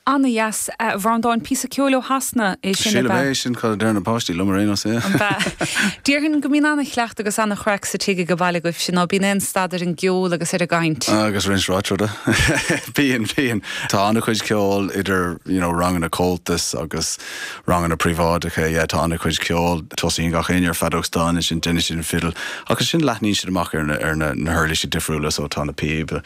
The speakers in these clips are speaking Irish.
Ana-dheas, a Bhreandáin, píosa ceoil ó Shasana é sin, ab ea? Sílim é, sin cad a deireann na páistí liom ar aon nós. An ea? Déarfainn go mbíonn ana-chleachtadh agus ana-chraic sa tigh ag an bhaile agaibhse, ná bíonn aon stad ar an gceol agus ar an gcaint? Agus roinnt ráite. Bíonn, bíonn. Tá ana-chuid ceoil, idir you know ranganna Comhaltas agus ranganna príobháideacha, yeah tá ana-chuid ceoil. Tosaíonn gach éinne ar feadóg stáin ansin deineann siad an fidil agus ansin leathnaíonn siad amach ar na ar na na huirlísi difriúla, so tá na píoba,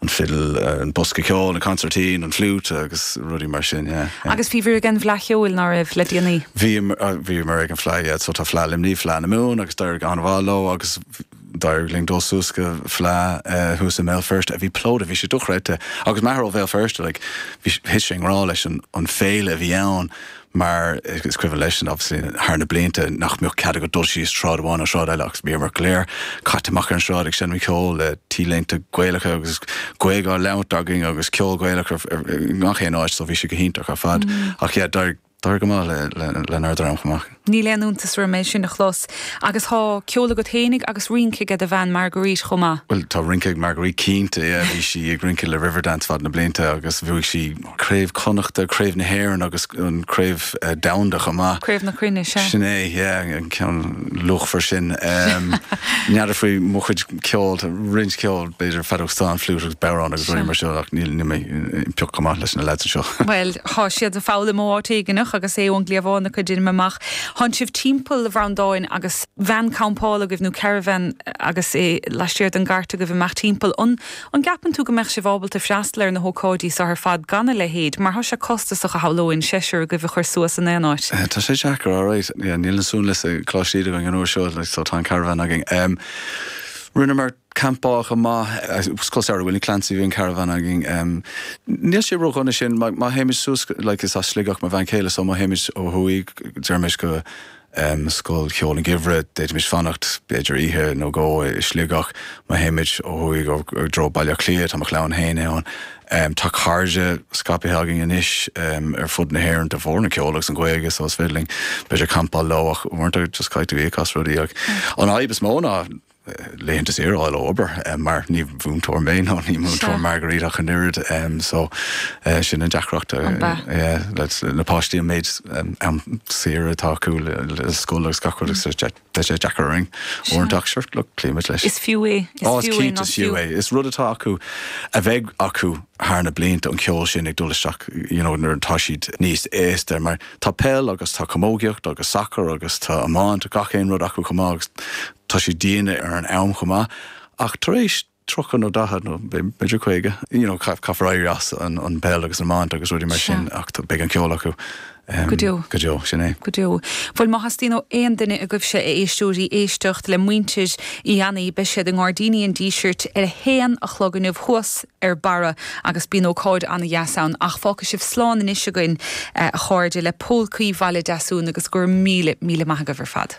an fidil, an bosca ceoil, an consairtín, an fliút agus rudaí mar sin, yeah, yeah. Agus bhíobhair ag an bhFleadh Cheoil, ná raibh, le déanaí? Bhíomar, ah, bhíomar ag an Fleadh, yeah, so tá Fleadh Luimnigh, Fleadh na Mumhan agus d'éirigh ana-mhaith leo agus d'éirigh linn dul suas go Fleadh, eh, thuas i mBéal Feirste a bhí plódaithe, bhí sé dochreidte, agus m'athair ó Bhéal Feirste, like, bhí, thit sé i ngrá leis an, an féile a bhí ann, mar is cuimhin leisean, obviously, thar na blianta nach mbeadh cead agat dul síos sráid amháin nó sráid eile agus bhíomar go léir caite amach ar an sráid ag seinm ceoil le T-léinte Gaelacha agus Gaeilge á labhairt againn agus ceol Gaelach i ngach aon áit so bhí sé go hiontach ar fad ach yeah, d'éirigh thar go maith lenár dream chomh maith. Níl aon iontas orm é sin a chlos agus thá ceol agat féinig agus rince ag do bhean Marguerite chomh maith. Bhuel tá rince ag Marguerite cinnte, bhí sí ag rince le Riverdance feadh na blianta agus bhuaigh sí Craobh Chonnachta, Craobh na hÉireann agus an Craobh Domhanda chomh maith. Craobh na Cruinne, sea. Sin é, yeah, an ceann luachmhar sin. N'fheadar faoi mo chuid ceoil, tá roinnt ceoil, b'fhéidir feadóg stáin, fliúit agus bodhrán agus rudaí mar sin ach níl, níl mé pioc chomh maith leis na lads anseo. Bhuel, tá siad ag foghlaim ó áit éigineach agus é ón gcliabhán a chuid ann amach. Téann sibh timpeall a Bhreandáin agus veain campála agaibh nó caravan agus é laistiar den gcairt agaibh ag imeacht timpeall an An gceapann tú go mbeadh sibh ábalta freastal ar na hócáidí so ar fad gan a leithéid, mar tá sé costasach shamhlóinn seisear agaibh a chur suas in aon áit? Tá sé deacair, alright. Yeah, níl na seanleids ag cloisteáil againn an uair seo, like, so tá an caravan againn. Em, rinneamar campáil chomh maith, ag Scoil Samhraidh Willie Clancy, bhí an caravan againn. Em, níl sé ródhona ansin, má, má théimid suas, like, is as Sligeach mo bhean chéile, so má théimid ó thuaidh, déarfaimis go, um Scoil Cheoil an Geimhridh, d'fhéadfaimis fanacht b'fhéidir oíche nó dhó i Sligeach. Má théimid ó thuaidh i dtreo Bhaile Átha Cliath, tá mo chlann féin ann. um Tá cairde scaipthe againn anois um ar fud na hÉireann de bharr an cheoil agus an Ghaeilge so is féidir linn b'fhéidir campáil leo ach uaireanta just caithfidh tú íoc as rudaí ach an fhadhb is mó ná laethanta saoire a fháil ó obair mar ní múinteoir mé ná ní múinteoir Marguerite ach an oiread so sin an deacracht leis na páistí an méid am saoire atá acu le scoil agus gach rud agus tá sé deacair orainn uaireanta sure look cloímid leis. Is fiú é. Á is cinnte is fiú é. Is rud atá acu a bheidh acu thar na blianta an ceol sin ag dul isteach you know nuair atá siad níos aosta mar tá peil agus tá camógaíocht agus sacar agus tá iomáint gach aon rud acu chomh maith agus Tá sé dian ar an am chomh maith ach tar éis tríocha nó daichead nó b'fhéidir caoga, you know, caithfear éirí as an bpeil agus an iomáint agus rudaí mar sin ach beidh an ceol acu go deo, sin é. Go deo. Bhuel, má theastaíonn ó aon duine agaibhse, a éisteoirí, éisteacht le muintir Uí Éanaí, beidh siad i nGairdíní an Dísirt ar a haon a chlog inniu thuas ar barra agus bíonn ócáid ana-dheas ann ach fágfaidh sibh slán anois againn, a chairde, le Pólcaí Bhaile Deasúin agus go raibh míle, míle maith agaibh ar fad.